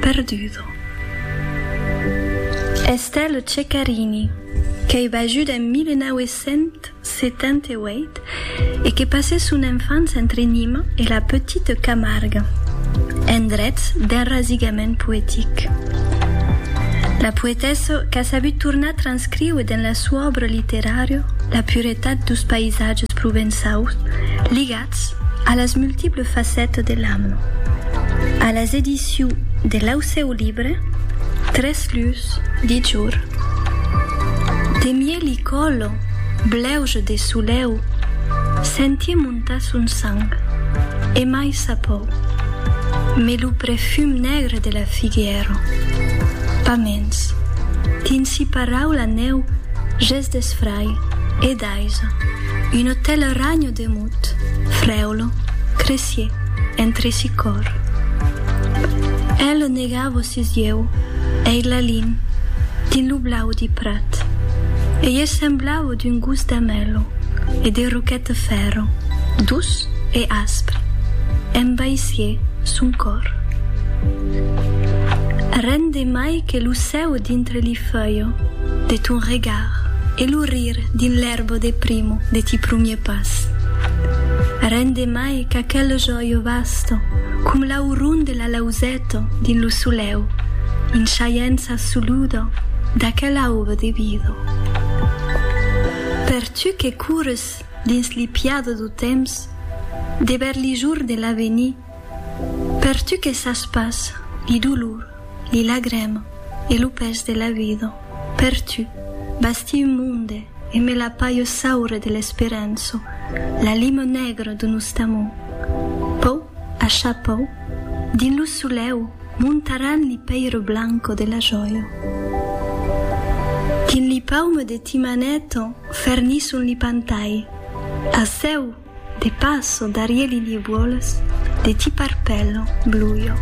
Perdudo. Estelle Ceccarini, qu'ei bajut en 1978 e que passèt son enfança entre Nîmes e la Petite Camargue, endrets d'enrasigament poetic. La poetessa qu'a sabut tornar transcríuer dens la soa òbra literària la puretat dus païsatges provençaus ligats Convidats a las multiples facettes de l'Am a las ediciu de l'Aucèu Libre, tres lus de jour. De mieli còlo, blèuge de solèu, sentie montar son sang, e mai sa pòu. Mes lo prefum negre de la figuièro. Pas mens. Dins si paraula nèu, ges d'esfrai, e d'aiso, un autel ragno Demut, frèolo, cresier, entresi còr. Eth lo negar vossi ieu, ei la lin, dins lo blau di prat, e ieu semblavo d'un gos d'amelo e de roquet de fèrro, dus e aspre, embaissié son còr. Ren de mai que lo cèu dintre li feuillo de ton regard. L'ar e lo rir dins l'erbo de primo de ti prumier pas Rende mai qu'aquel joio vasto com l'aurun de la lauzeto dins lo soleu In chaiença soludo d'aquel aube de vido Per tu que coures dins li piado do temps Dever li jour de l'avenir Per tu que sas pas li dolor, li lagrem e lo pes de la vida, per tu, basti un monde e me la paio saure de l'esperanço, la lima negra de nost amor. Pau, acha pau, dins lo soleu montaràn li peire blanco de la jòia. Dins li paume de ti maneta fernisson li pantai. Asseu! De passo darie li niebuoles de ti parpèllo bluio.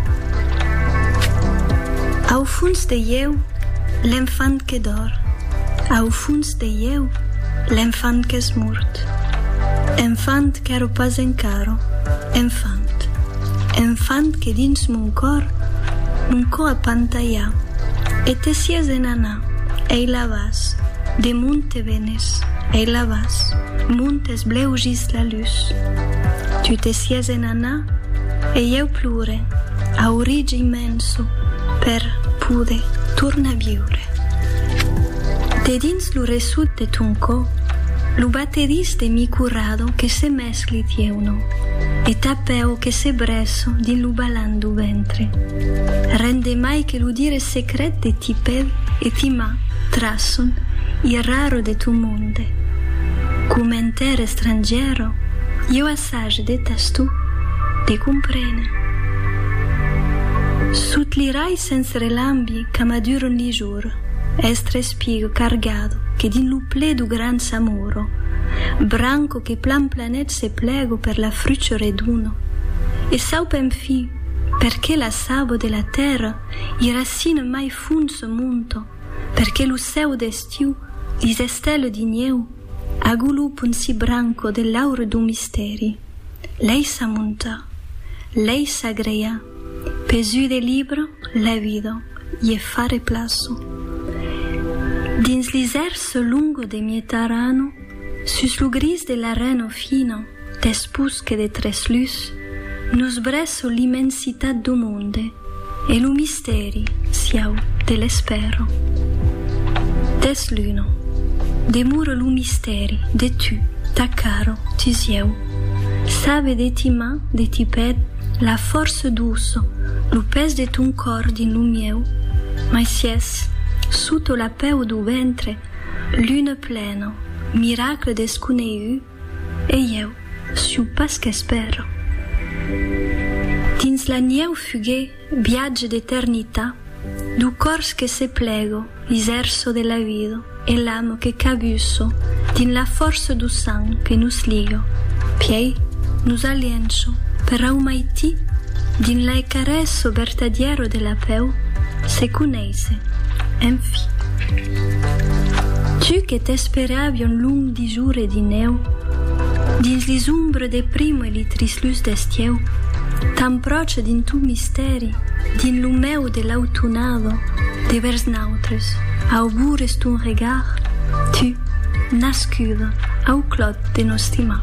Au fons de ieu, l'enfant que dor, au fons de ieu, l'enfant qu'es mort. Enfant qu'èro pas encara enfant, enfant que dins mon còr, mon cò a pantalhà, e te sies en anar, ei la vas, de mon te venes, ei la vas, mon t'es Blèu gis la lus. Tu te sies en anar e ieu plure a orig immenso per poder tornar viure. De dins lo ressut de ton cò, lo batedís de mi curado que se mescli thieu no e ta pèu que se bresso dins lo balan do ventre. Ren de mai que lo dire secret de ti pèl e ti ma trasson i raro de ton mond. Inde. Commentaire estrangiero, Ieu assage de tastou de comprene. Sot li rais sens relambi qu'amaduron li jor, est respigo cargado que dins lo ple do gran samoro, branco que plan planet se plego per la frucho redono, e saup enfin perqué la sabo de la terra i racine mai fond se monto, Perque lo cèu d'estiu, lis estèles di nieu, agolop un si branco de l'aure d'un mistèri. Lei sa monta. Lei sa greia. Pes ui de libre, la vida, ie fa replaço. Dins li zèrce longo de Mietarano, sus lo gris de l'areno fina, Despús que de tres lus nos brèsso l'immensitat do monde e lo mistèri sieu de l'espèro. Deth luno demore lo mistèri de tu, ta caro, ti sieu. Sabe de ti man, de ti pèd, la fòrça doço, lo pes de ton còr dins lo mieu, mai sies soto la pèu do ventre, lune pleno, miracle desconeihut, E ieu suu pas qu'espèro. Dins la nieu fuguer viatge d'eternitat du cors que se plego l'iserço de la vido e l'amo que cabusso dins la força du sang que nos ligo piei nos alienço per aumaitir dins l'aicarès o bertadiero de la peu se Ese, en fi. Tu que t'esperavion long disur e dineu, dins li zombres de primo e li trislus d'estieu, t'empròche dins ton mistèri, dins lo meu de l'autunado, de vers nautres, augures ton regard, tu, nascuda au clòt de nos stimar.